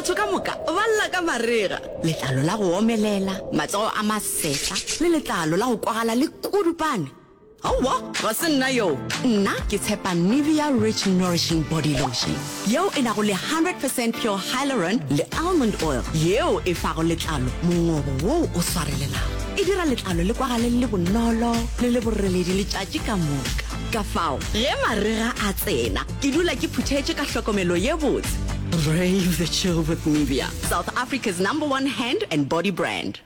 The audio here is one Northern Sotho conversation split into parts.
batho ka moka ba lla ka marega letlalo la go omelela matsogo a masetla le letlalo la go kwagala le kudupane aowa ga se nna yoo nna ke tshepa nivea rich nourishing body lotion yeo e nago le 100 percent pure hyloron le almond oil yeo e fago letlalo mongobo woo o swarelelago e dira letlalo le kwagale le bonolo le le boreledi letšatši ka moka ka fao ge marega a tsena Ke dula ke phuthetše ka hlokomelo ye botse. Brave the chill with Nivea, South Africa's number one hand and body brand.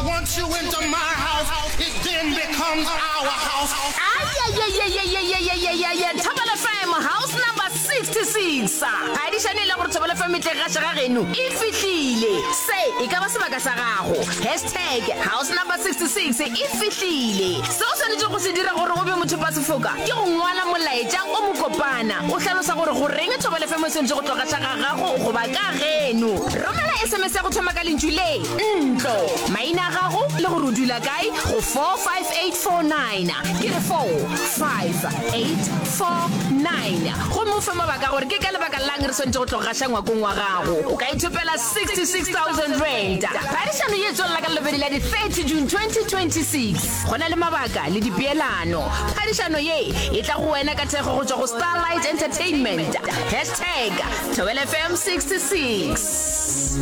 Once you enter my house, it then becomes our house. Ayayayayayayayayayaya Thobela FM house number 66 a di šane e le gore Thobela FM e tle gaša ga geno e fihlile se e ka ba sebaka sa gago Hashtag Tag, House Number 66 e fihlile. Seo o swanetšego go se dira gore o be mothopasefoka ke go ngwala molaetša o mokopana o hlalosa gore goreng thobalefemo e swanetše go tlogaša ga gago goba ka geno. Romela SMS ya go thoma ka lentšu le, ntlo, maina a gago le gore o dula kae go 45849, ke re 45849, gomme o fe mabaka gore ke ka lebaka la'ng re swanetše go tlogaša ngwakong wa gago. O ka ithopela R66,000. Phadišano ye e tswelela ka Labobedi la di 30 June 2026. Go na le mabaka le dipeelano. Phadišano ye e tla go wena ka thekgo go tšwa go Starlight Entertainment. Hashtag Thobela FM 66.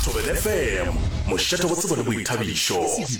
Thobela FM, mošate go tsebo le boithabišo.